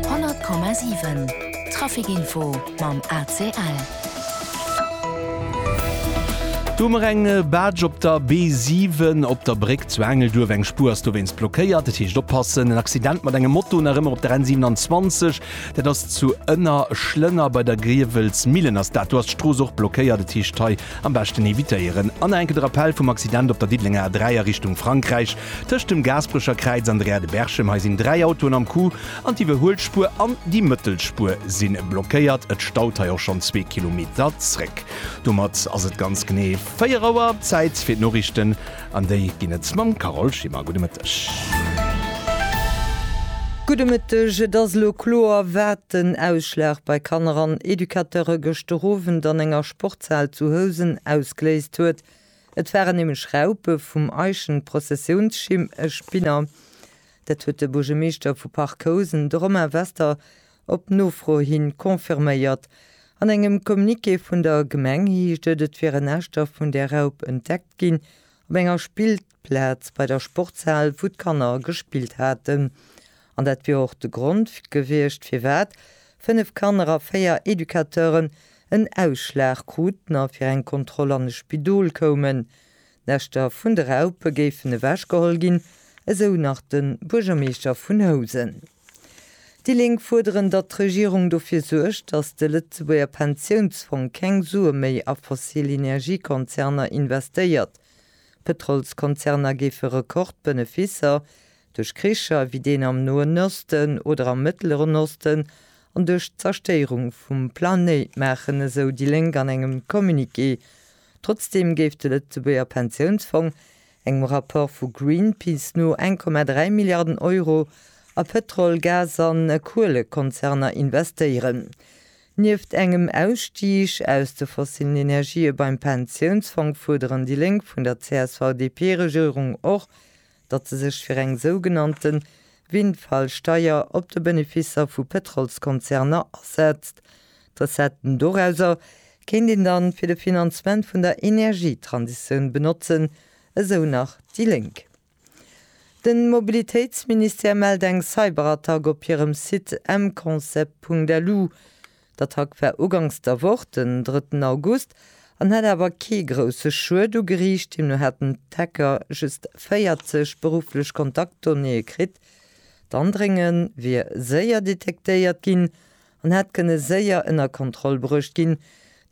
100,7 Traficinfo mam ACL. Do hu mer eng Barge op der B7 op der Bréck zu Engelduerf. Eng Spuer ass dowéinst blockéiert, dat heescht oppassen. En Accident mat engem Moto nach ëmmer op der N27, dat ass zu Ënnerschlënner. Bei der Griewelsmillen ass dat, do ass d'Strooss och blockéiert, dat heescht hei am beschten evitéieren. An nach eng Kéier de Rappell vum Accident op der Diddelenger A3 a Richtung Frankräich. Tëscht dem Gaasperecher Kräiz an der Aire de Berchem, hei sinn dräi Autoen am Coup an d'Iwwerhuelspuer an déi Mëttelspuer si blockéiert. Et staut hei och schonn zwee Kilometer zréck. Domat ass et ganz genee 4 Auer. Zäit fir d'Noriichten an déi ginn et mam Carole Schimmer. Gudde Mëtteg. Gudde Mëtteg. Et ass elo kloer, wat den Ausschlag bei Kanner an Educateure gëschter Owend an enger Sportshal zu Housen ausgeléist huet. Et waren nämlech Raupe vum Eichenprozessionsschim, e Spinner. Dat huet de Buergermeeschter vu Parc-Housen, de Romain Wester, op Nofro hi confirméiert. An engem Communiqué vun der Gemeng heescht et, et wieren Äschter vun där Raup entdeckt ginn op enger Spillplaz bei der Sportshal, wou d'Kanner gespillt haten. An dat wier och de Grond gewiescht, firwat fënnef Kanner a véier Educateuren en Ausschlag kruten a fir eng Kontroll an e Spidol koumen. D'Näschter vun de Raupe géifen ewechgeholl ginn, esou nach de Buergermeeschter vun Housen. Déi Lénk fuerderen, datt d'Regierung dofir suergt, datt de Lëtzebuerger Pensiounsfong keng Sue méi a fossil Energiekonzerner investéiert. D'Pëtrolskonzerner géife Rekordbeneficer Duerch Kricher wéi deen am Noen Osten oder am Mëttleren Osten an duerch d'Zerstéierung vum Planéit, maachen esou déi Lénk an engem Communiqué. Trotzdeem géif de Lëtzebuerger Pensiounsfong engem Rapport vu Greenpeace no 1,3 Milliarden Euro a Pëtrol-, Gas an Kuelekonzerner investéieren. Nieft engem Ausstig aus de fossillen Energië beim Pensiounsfong fuerderen déi Lénk vun der CSV-DP-Regierung och, datt se sech fir eng sougenannte Windfall-Steier op de Benefisser vu Pétrolskonzerner asetzt. D'Recetten dorauser kéint een dann fir de Finanzement vun der Energietransitioun benotzen, esou nach déi Lénk. Den Mobilitéitsministère mellt eng Cyberattack op hirem Site mconcept.lu. D'Attack war ugangs der Woch, den drëtten August, an hätt awer kee grousse Schued ugeriicht. Deemno hätten d'Hacker just 40 berufflech Kontaktdonnéeë kritt. D'Andréngen wier séier detektéiert ginn an hätt kënne séier ënner Kontroll bruecht ginn.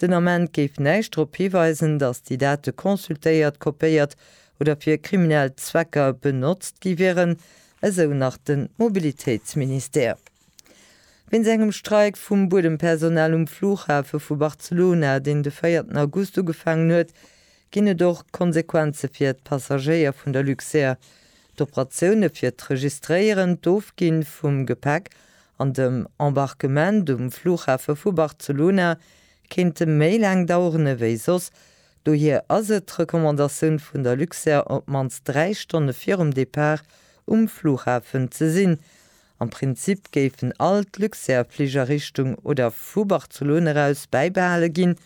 Den Ament géif näischt drop hiweisen, datt déi Date consultéiert, kopéiert oder fir kriminell Zwecker benotzt gi wieren, esou nach de Mobilitéitsministère. Wéinst engem Streik vum Buedempersonal um Flughafe vu Barcelona, deen de véierten August ugefaangen huet, ginn et och Konsequenze fir d'Passagéier vun der Luxair. D'Operatioune fir d'Registréieren, d'Ofgi vum Gepäck an dem Embarquement um Flughafe vu Barcelona kéinte méi laang daueren ewéi soss. Dohier ass et d'Recommandatioun vun der Luxair, op d'mannst dräi Stonne virum Depart um Flughafen ze sinn Am Prinzip géifen all d'Luxair Fliger Richtung oder vu Barcelone eraus bäibehale ginn,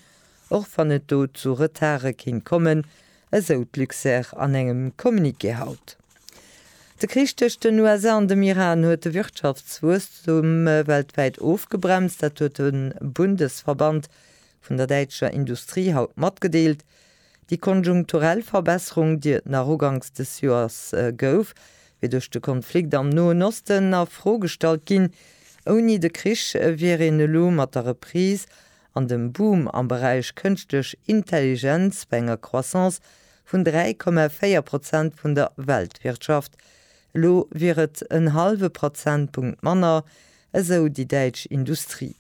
och wann et do zu Retarde kéint kommen, esou d'Luxair an engem Communiqué haut. De Krich tëscht den USA an dem Iran huet de Wirtschaftswuesstum weltwäit ofgebremst, dat huet de Bundesverband vun der däitscher Industrie haut matgedeelt. Déi konjunkturell Verbesserung, déi et nach uganks des Joers gouf, wier duerch de Konflikt am Noen Osten a Fro gestallt ginn. Ouni de Krich wier een elo mat der Reprise an dem Boom am Beräich Kënschtlech Intelligenz bei enger Croissance vun 3,4 Prozent vun der Weltwirtschaft. Elo wier et en hallwe Prozentpunkt manner, esou déi däitsch Industrie.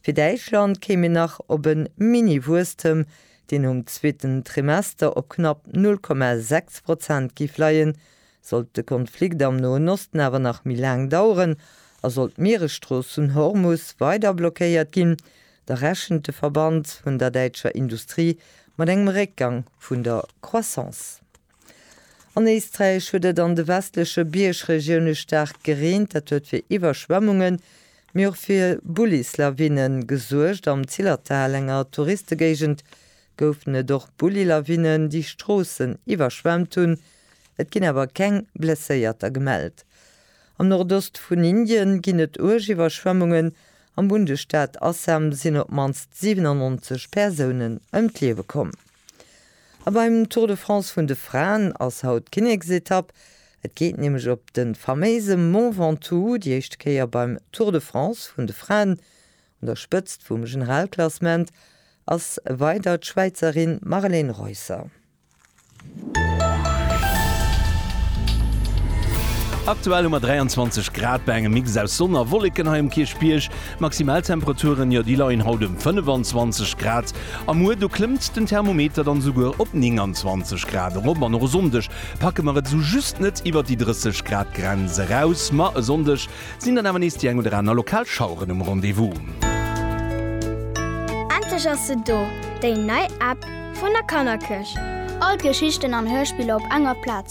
Fir Däitschland kéim een nach op e Mini-Wuesstem, deen um zweeten Trimester op knapp 0,6 Prozent géif leien, sollt de Konflikt am Noen Osten awer nach méi laang daueren a sollt d'Mieresstrooss vun Hormus weider blockéiert ginn, da rechent de Verband vun der däitscher Industrie mat engem Réckgang vun der Croissance. An Éisträich huet et an de westleche Biergregioune staark gereent. Dat huet fir Iwwerschwemmungen, mee och fir Bullislawine gesuergt. Am Zillertal, enger Touristegéigend, goufen et och Bullilawinnen, déi Stroossen iwwerschwemmt hunn. Et ginn awer keng Blesséierter gemellt. Am Nordost vun Indien ginn et uerg Iwwerschwemmungen. Am Bundesstaat Assam sinn op d'mannst 97 Persounen ëm d'Liewe komm. A beim Tour de France vun de Fraen ass haut d'Kinneksetapp. Et geet nämlech op de faméise Mont Ventoux, déi éischte Kéier beim Tour de France vun de Fraen. Un der Spëtzt vum Generalklassement ass weider d'Schwäizerin Marlene Reusser. Aktuell hu mer 23 Grad bei engem Mix aus Sonn a Wolleken hei um Kierchbierg. D'Maximaltemperaturen, jo déi leien haut ëm 25 Grad a muer do klëmmt den Thermometer dann esouguer op 29 Grad erop an och e Sonndeg packe mer et esou just net iwwert déi 30 Grad Grenz eraus. Ma e Sonndeg sinn dann awer nees déi eng oder aner lokal Schaueren um Rendez-vous. Endlech ass se do, déi nei App vun der Kannerkëscht! All d'Geschichten an Hörspiller op enger Plaz.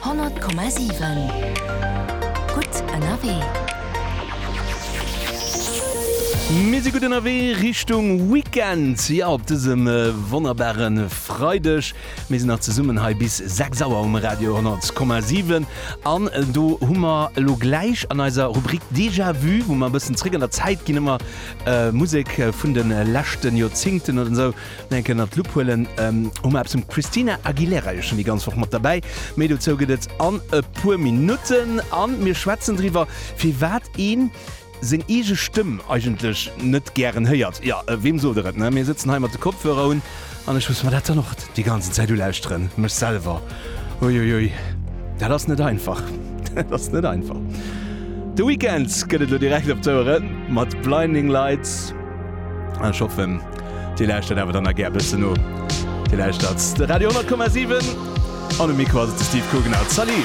100,7 Gutt ënnerwee. Mir si gutt ënnerwee Richtung Weekend, jo, op dësem wonnerbare Freideg. Mir sinn nach zesummen hei bis 6 Auer um Radio 100,7. An do hu mer elo gläich an eiser Rubrik Déjà-vu, wou mer e bëssen zréck an der Zäit ginn, ëmmer Musek vun de leschte Joerzingten oder esou, Nach eng Kéier ënnert d'Lupp huelen. Hu mer eppes vum Christina Aguilera jo schonn déi ganz Woch mat derbäi. Méi dozou gëtt et an e puer Minutten. A mir schwätzen driwwer, firwat ee seng eege Stëmm eigentlech net gären héiert. Jo, weem sot der et, ne? Mir sëtzen hei mat de Kopfhörer un an ech muss mer dat dann och déi ganzen Zäit ulauschteren, mech selwer. Uiuiui, dat ass net einfach. Dat ass net einfach. The Weeknd gëtt et elo direkt op d'Ouere mat Blinding Lights an ech hoffen, Dir lauschtert awer dann a gär bëssen no. Dir lauschtert de Radio 10,7 an um Mikro ass et de Steve Coogan. Salut!